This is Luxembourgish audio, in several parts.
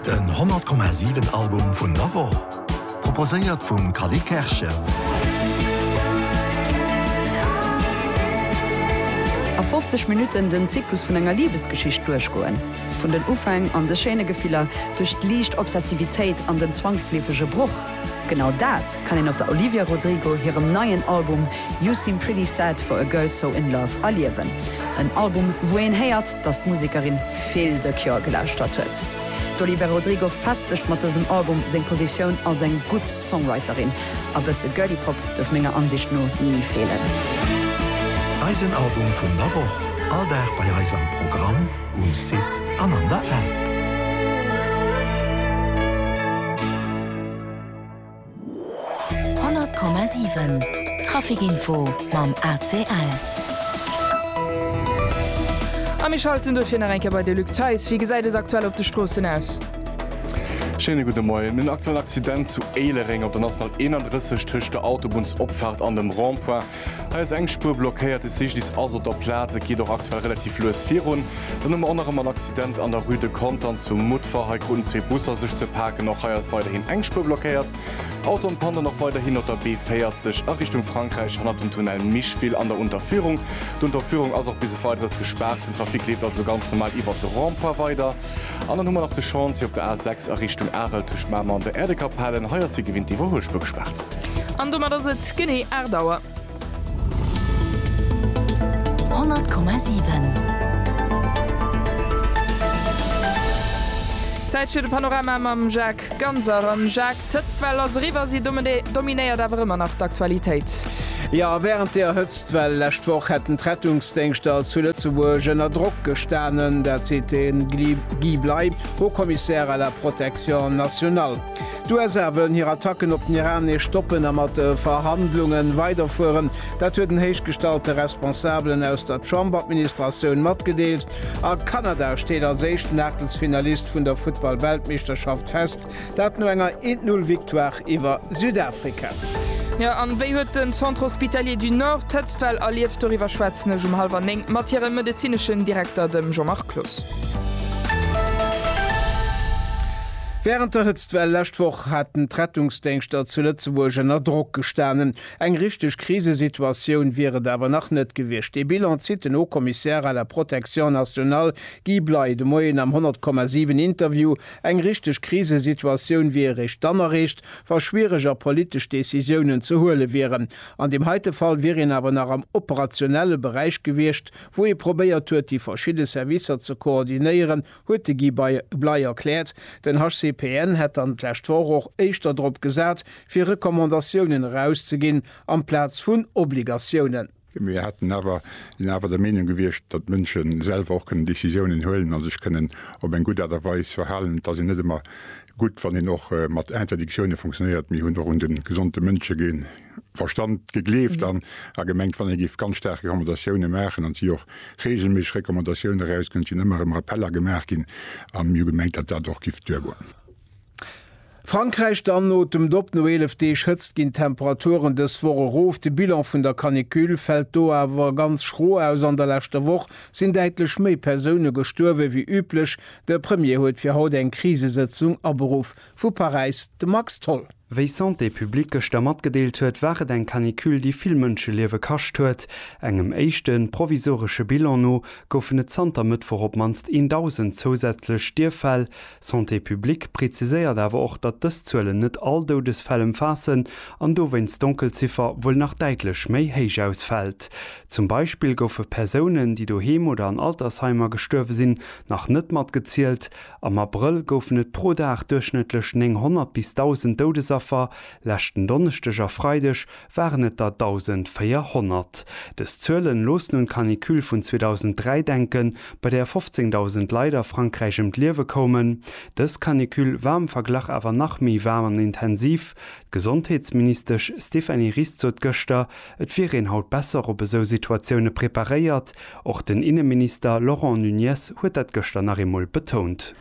Den 100,7 Album vun der Woch, proposéiert vum Cally Kerschen. A 50 Minutten den Zyklus vun enger Libesgeschicht duerchgoen. Vun den Ufäng an de schéine Gefiller, duerch d'liicht Obsessivitéit an den zwangsleefege Broch. Genau dat kann een op der Olivia Rodrigo hirem neien Album You Seem Pretty Sad For A Girl So In Love erliewen. En Album, wou een héiert, datt d'Musekerin vill The Cure gelauschtert huet. D'Olivia Rodrigo festegt mat dësem Album seng Positioun als eng gutt Songwriterin. A bësse Girly Pop duerf menger Ansicht no ni feelen. Eisen Album vun der Woch, all Dag bei eis am Programm. um Site an an der App. Honnert Komma siwen, Trafikinfo mam ACL. A mir schalten dofir nach eng Kéier bei de Luc Theis. Wéi gesäit et aktuell op de Stroossen aus? Schéine gudde Moien. En aktuellen Accident zu Éilereng op der National 31 tëscht der Autobunnsopfahrt an dem Rond-point. Hei ass eng Spuer blockéiert, de Cyclist ass op der Plaz. Et geet och aktuell relativ lues virun. Dann hu mer och nach ëmmer en Accident an der Rue de Contern zu Mutfer. Hei kruten zwee Busser sech ze paken. Och hei ass weiderhin eng Spuer blockéiert. Auto an Panne dann och weiderhin op der B40 a Richtung Frankräich hannert dem Tunnel Micheville an der Unterführung. D'Unterführung ass och bis e Weideres gespaart. Den Trafic leeft also ganz normal iwwert de Rond-point weider. An dann hu mer nach de Chantier op der A6 a Richtung Arel tëscht Mamer an der Äerdekapellen. Hei ass wéi gewinnt d'Iwwerhuelspur gespaart. An domat ass et genee 8 Auer. 100,7. Zäit fir de Panorama mam Jacques Ganser. An Jacques. D'Hëtztwell ass eriwwer, si dominéiert awer ëmmer nach d'Aktualitéit. Jo, wärend der Hëtztwell lescht Woch hätten d'Rettungsdéngschter zu Lëtzebuerg ënner Drock gestanen. Dat seet de Guy Bleiby, Haut Commissaire à la protection nationale. D'USA wëllen hir Attacken op den Iran nees stoppen a mat de Verhandlunge weiderfueren. Dat huet en héichgestallte Responsabelen aus der Trump-Administratioun matgedeelt. A Kanada steet als éischten Aachtelsfinalist vun der Futtball-Weltmeeschterschaft fest. Dat no enger 'et null' Victoire iwwer Südafrika. Jo, an wéi huet den Centre Hospitalier du Nord d'Hëtztwell erlieft? Doriwwer schwätzen ech um hallwer 9 mat hirem medezineschen Direkter, dem Jean-Marc Cloos. Wärend der Hëtztwell lescht Woch haten d'Rettungsdéngschter zu Lëtzebuerg ënner Drock gestanen. Eng richteg Krisesituatioun wier et awer nach net gewiescht. Dee Bilan zitt den Haut-Commissaire à la protection nationale Guy Bley de Moien am 100,7 Interview Eng richteg Krisesituatioun wier eréischt dann erreecht, wa schwiereg a politesch Decisiounen ze huele wieren. An deem heite Fall wier een awer nach am operationelle Beräich gewiescht, wou ee probéiert huet, déi verschidde Servicer ze koordinéieren, huet de Guy Bley erkläert. Den HCPN hätt dann d'lescht Woch och éischter drop gesat, fir Recommandatiounen erauszeginn amplaz vun Obligatiounen. Mir hätten awer, sinn awer der Meenung gewiescht, datt d'Mënsche selwer och kënnen Décisiounen huelen a sech kënnen op eng gutt Aart a Weis verhalen. Et ass jo net ëmmer gutt, wann een och mat Interdictione funktionéiert. Mir hunn och un de gesonde Mënschegeen Verstand gegleeft an a gemengt, wann ee géif ganz staark Recommandatioune maachen, an et si och reegelméisseg Recommandatioune erausginn, et sinn ëmmer erëm Rappeller gemaach ginn, a mir hu gemengt, datt dat och géif duergoen. Frankräich dann, Otemt op, no 11 Deeg Hëtzt ginn d'Temperaturen dës Woch erof. De Bilan vun der Canicule fält do awer ganz schro aus. An der leschter Woch sinn däitlech méi Persoune gestuerwe wéi üblech. De Premier huet fir haut eng Krisesëtzung aberuff. Vu Paräis de Max Tholl. Wéi Santé publique gëschter matgedeelt huet, war et eng Canicule, déi vill Mënscheliewe kascht huet. Engem éischte provisoresche Bilan no goufen et zanter Mëttwoch op d'mannst een Dausend zousätzlech Stierffäll. Santé publique preziséiert awer och, datt dës Zuelen net all Doudesfäll ëmfaassen an dowéinst d'Donkelziffer wuel nach däitlech méi héich ausfält. Zum Beispill goufe Persounen, déi doheem oder an Altersheimer gestuerwe sinn, nach net matgezielt. Am Abrëll goufen et pro Dag duerchschnëttlech 900 bis 1.000 Doudesaffer, leschten Donneschdeg a Freideg waren et der 1.400. Dës Zuelen loossen un d'Canicule vun 2003 denken, bei där 15.000 Leit a Frankräich ëm d'Liewe koumen. Dës Canicule war am Verglach awer nach méi waarm an intensiv. D'Gesondheetsministesch Stéphanie Ries sot gëschter, et wier een haut besser op esou Situatioune preparéiert. Och den Inneminister Laurent Nunez huet dat gëschter nach eemol betount.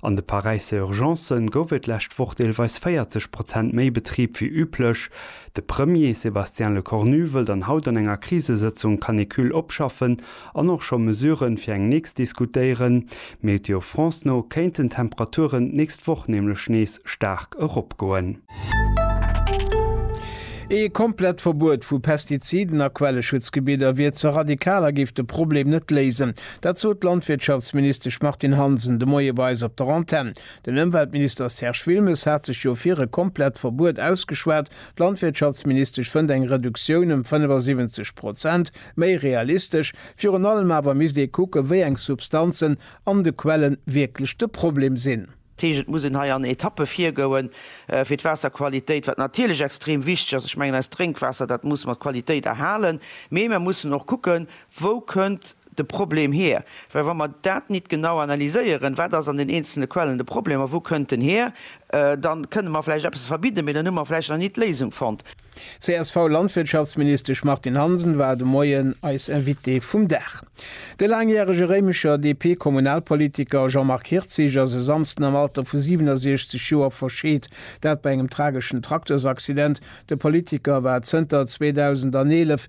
An de Paräisser Urgencen gouf et d'lescht Woch deelweis 40 Prozent méi Betrib wéi üblech. De Premier Sébastien Lecornu wëll dann haut an enger Krisesëtzung d'Canicule opschaffen an och scho Mesuren fir eng nächst diskutéieren. Météo France no kéinten d'Temperaturen d'nächst Woch nämlech nees staark eropgoen. Ee komplett Verbuet vu Pestiziden a Quelleschutzgebidder wier ze radikal a géif de Problem net léisen. Dat sot d'Landwirtschaftsministesch Martine Hansen de Moie bei eis op der Antenn. Den Ëmweltminister Serge Wilmes hat sech jo fir e komplett Verbuet ausgeschwat. D'Landwirtschaftsministesch fënnt eng Reduktioun ëm 75 Prozent méi realistesch. Virun allem awer misst ee kucken, wéi eng Substanzen an de Quellen wierklech de Problem sinn. Dat heescht, et muss een hei an Etappe virgoen, fir d'Waasserqualitéit, wat natierlech extrem wichteg ass, ech mengen eist Drénkwaasser, dat muss mer d'Qualitéit erhalen, mee mer mussen och kucken, wou kënnt de Problem hier. Well wa mer dat nit genau analyséieren, wat ass an den eenzelne Quellen de Problem a wou kënnt en hier, da kënne mer vläicht eppes verbidden, mee dann hu mer vläicht nach nit d'Léisung fonnt. D'CSV-Landwirtschaftsministesch Martine Hansen war de Moien eis Invitée vum Dag. De laangjärege Réimecher DP-Kommunalpolitiker Jean-Marc Hirtzig ass e Samsden am Alter vu 67 Joer verscheet. Dat bei engem trageschen Traktors-Accident. De Politiker war zënter 2011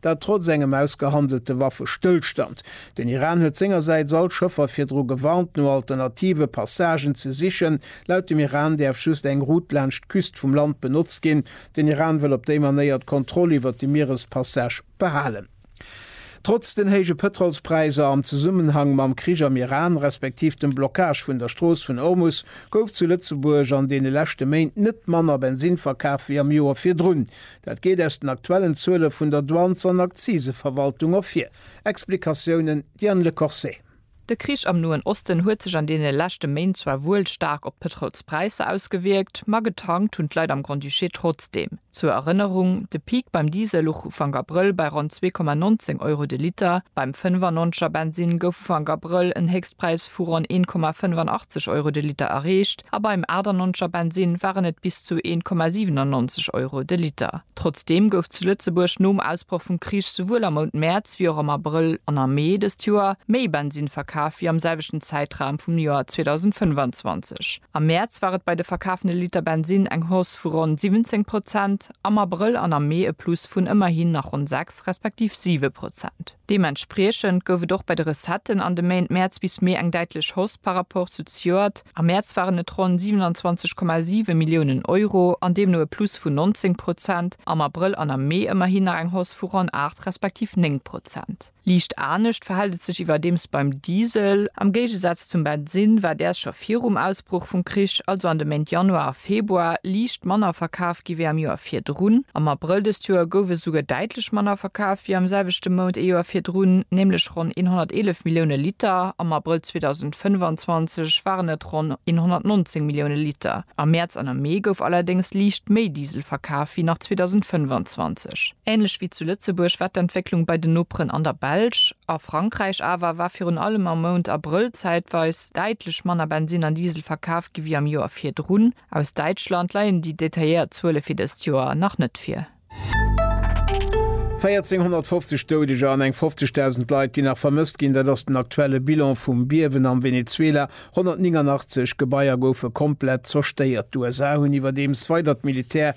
Dat trotz engem ausgehandelte Waffestëllstand. Den Iran huet sengersäits all Schëffer virdru gewarnt, no alternative Passagen ze sichen. Laut dem Iran däerf just eng Route laanscht d'Küst vum Land benotzt ginn. Den Iran wëll op déi Manéier d'Kontroll iwwert de Mierespassage behalen. Trotz den héije Pëtrolspräisser am Zesummenhang mam Krich am Iran, respektiv dem Blockage vun der Strooss vun Ormus, gouf zu Lëtzebuerg an deene leschte Méint net manner Bensinn verkaf wéi am Joer virdrun. Dat geet aus den aktuellen Zuele vun der Douanes an Akziseverwaltung ervir. Explikatiounen, Diane Le Corset. De Krich am Noen Osten huet sech an deene leschte Méint zwar wuel staark op d'Pëtroulspräisser ausgewierkt, ma getankt hunn d'Leit am Grand-Duché trotzdeem. Zur Erënnerung, de Peak beim Diesel luch Ufank Abrëll bei ronn 2,19 Euro de Liter. Beim 95 er Bensinn gouf Ufank Abrëll en Héchstpräis vu ronn 1,85 Euro de Liter erreecht. A beim 98 er Bensinn waren et bis zu 1,97 Euro de Liter. Trotzdeem gouf zu Lëtzebuerg nom Ausbroch vum Krich souwuel am Mount Mäerz wéi och am Abrëll an am Mee dëst Joer méi Bensinn verkaf wéi am selwechten Zäitraum vum Joer 2025. Am Mäerz war et bei de verkafene Liter Bensinn eng Hausse vu ronn 17 Prozent, am Abrëll an am Mee e Plus vun ëmmerhin nach ronn 6, respektiv 7 Prozent. Deementspriechend gouf et och bei de Recetten an de Méint Mäerz bis Mee eng däitlech Hausse par rapport zu zejoert. Am Mäerz waren et ronn 27,7 Milliounen Euro an deemno e Plus vun 19 Prozent, am Abrëll an am Mee ëmmerhin nach eng Hausse vu ronn 8 respektiv 9 Prozent. Liicht anescht verhält et sech iwwerdeems beim Diesel. Am Géigesaz Zum Bensin war däers scho virum Ausbruch vum Krich, also an de Méint Januar a Februar, liicht manner verkaf gi wéi am Joer virdrun. Am Abrëll dëst Joer gouf esouguer däitlech manner verkaf wéi am selwechte Mount ee Joer virdrun, nämlech ronn 111 Millioune Liter. Am Abrëll 2025 waren et ronn 119 Millioune Liter. Am Mäerz an am Mee gouf allerdéngs liicht méi Diesel verkaf wéi nach 2025. Änlech wéi zu Lëtzebuerg war d'Entwécklung bei den Noperen an der Belsch. A Frankräich awer war virun allem am Mount Abrëll zäitweis däitlech manner Bensinn an Diesel verkaf gi wéi am Joer virdrun. Aus Däitschland leien déi detailléiert Zuele fir dëst Joer nach net vir. 1.450 Doudeger an eng 50.000 Leit, déi nach vermësst ginn, dat ass den aktuelle Bilan vum Biewen am Venezuela. 189 Gebaier goufe komplett zerstéiert. D'USA hunn iwwerdeems weider d'Militär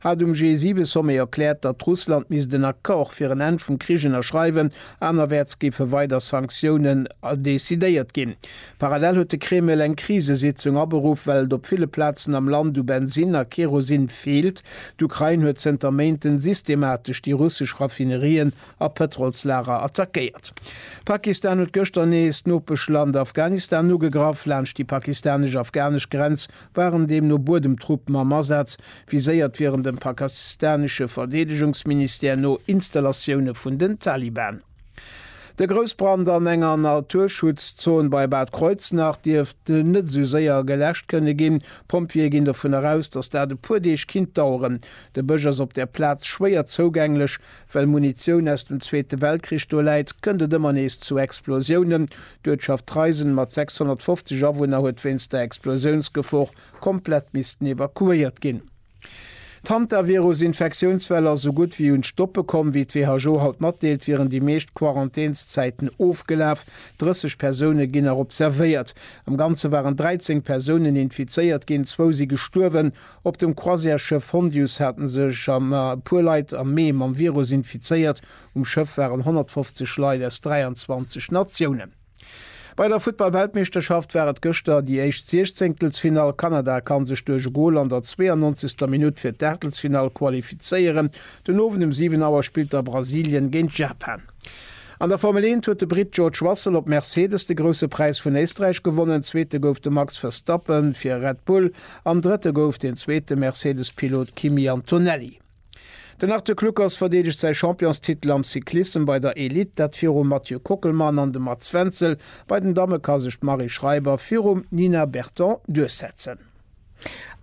hat um G7-Sommet erkläert, datt Russland misst en Accord fir en Enn vum Krich ënnerschreiwen, anerwäerts géife weider Sanktiounen decidéiert ginn. Parallel huet de Kreml eng Krisesitzung aberuff, well et op ville Plazen am Land u Bensinn a Kerosin feelt. D'Ukrain huet zënter Méinten systematesch déi russesch Raffinerien a Pëtrolslager attackéiert. Pakistan huet gëschter nees d'Nopeschland Afghanistan ugegraff. Laanscht déi pakistanesch-afghanesch Grenz waren deemno Buedemtruppen am Asaz, viséiert wieren dem pakistanesche Verdeedegungsministère no Installatioune vun den Taliban. De Groussbrand an enger Naturschutzzon bei Bad Kreuznach dierft net esou séier geläscht kënne ginn. D'Pompjeeë ginn dovun eraus, datt dat e puer Deeg kinnt daueren. De Bësch ass op der Plaz schwéier zougänglech, Well Munitioun aus dem Zweete Weltkrich do läit, kënnt et ëmmer nees zu Explosiounen. D'Uertschaft Treisen mat 650 Awunner huet wéinst der Explosiounsgefor komplett missten evakuéiert ginn. D'Hantavirus-Infektiounswell ass esou gutt wéi un d'Stoppe komm. Wéi d'WHO haut matdeelt, wieren déi meescht Quarantänszäiten ofgelaf. 30 Persoune ginn nach observéiert. Am Ganze waren 13 Persounen infizéiert ginn, zwou si gestuerwen. Op dem Croisièresschëff Hondius hate sech e puer Leit am Mee mam Virus infizéiert. Um Schëff waren 150 Leit aus 23 Natiounen. Bei der Futtball-Weltmeeschterschaft war et gëschter déi éischt Siechzéngtelsfinall. Kanada kann sech duerch e Gol an der 92. Minutt fir d'Aachtelsfinall qualifizéieren. Den Owend um 7 Auer spillt da Brasilien géint Japan. An der Formel eent huet de Britt George Russell op Mercedes de Grousse Präis vun Éisträich gewonnen, Zweete gouf de Max Verstappen fir Red Bull an Drëtte gouf den zweete Mercedes-Pilot Kimi Antonelli. Den Arthur Kluckers verdeedegt säi Championstitel am Cyclissem bei der Elite, dat virum Mathieu Kockelmann an dem Mats Wenzel. Bei den Damme ka sech d'Marie Schreiber virum Nina Berton duerchsetzen.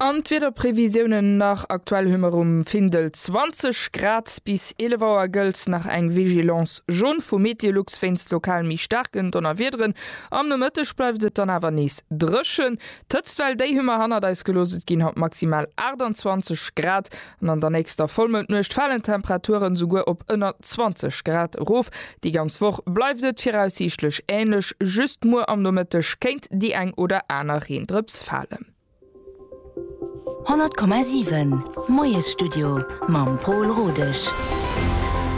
An d'Wiederprevisiounen nach, Aktuell hu mer um Findel 20 Grad. Bis 11 Auer gëllt nach eng Vigilance jaune vu Meteolux wéinst lokal méi staarken Donnerwiederen. Am Nomëtteg bleift et dann awer nees dréchen. D'Hëtztwell, déi hu mer hannert eis gelooss, et ginn haut maximal 28 Grad. An an der nächster Vollmoundnuecht falen d'Temperaturen esouguer op ënner 20 Grad erof. Déi ganz Woch bleift et viraussiichtlech änlech, just muer am Nomëtteg kéint déi eng oder aner Reendrëps falen. 100,7 Moiesstudio mam Pol Rodesch.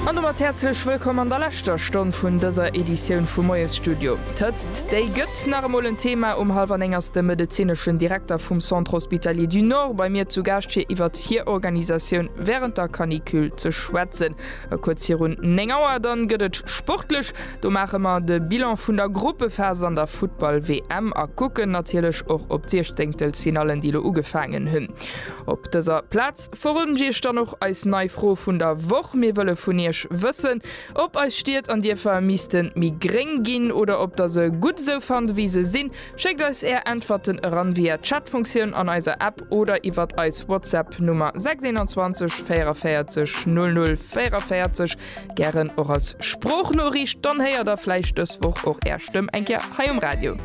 An domat häerzlech wëllkomm an der leschter Stonn vun dëser Editioun vum Moiesstudio. D'Hëtzt, déi gëtt nach emol en Thema. Um hallwer 9 ass de medezineschen Direkter vum Centre Hospitalier du Nord bei mir zu Gaascht fir iwwert hir Organisatioun wärend der Canicule ze schwätzen. A kuerz virun 9 Auer dann gëtt et sportlech. Do maache mer de Bilan vun der Gruppephas an der Futtball-WM a kucken natierlech och op d'Siechzenktelfinallen déi lo ugefaangen hunn. Op dëser Plaz verroden ech iech dann och eis nei Fro vun der Woch. Mir wëlle vun iech wëssen. Ob eis Stied an Dierfer missten méi gréng ginn oder ob der se gutt esou fannt ewéi se sinn? Schéckt eis är Äntwerten eran via Chatfunktioun an eiser App oder iwwert eis Whatsapp Nummer 621 44 00 44, gären och als Sproochnoriicht, dann héiert der vläicht dës Woch och är Stëmm eng Kéier hei um Radio.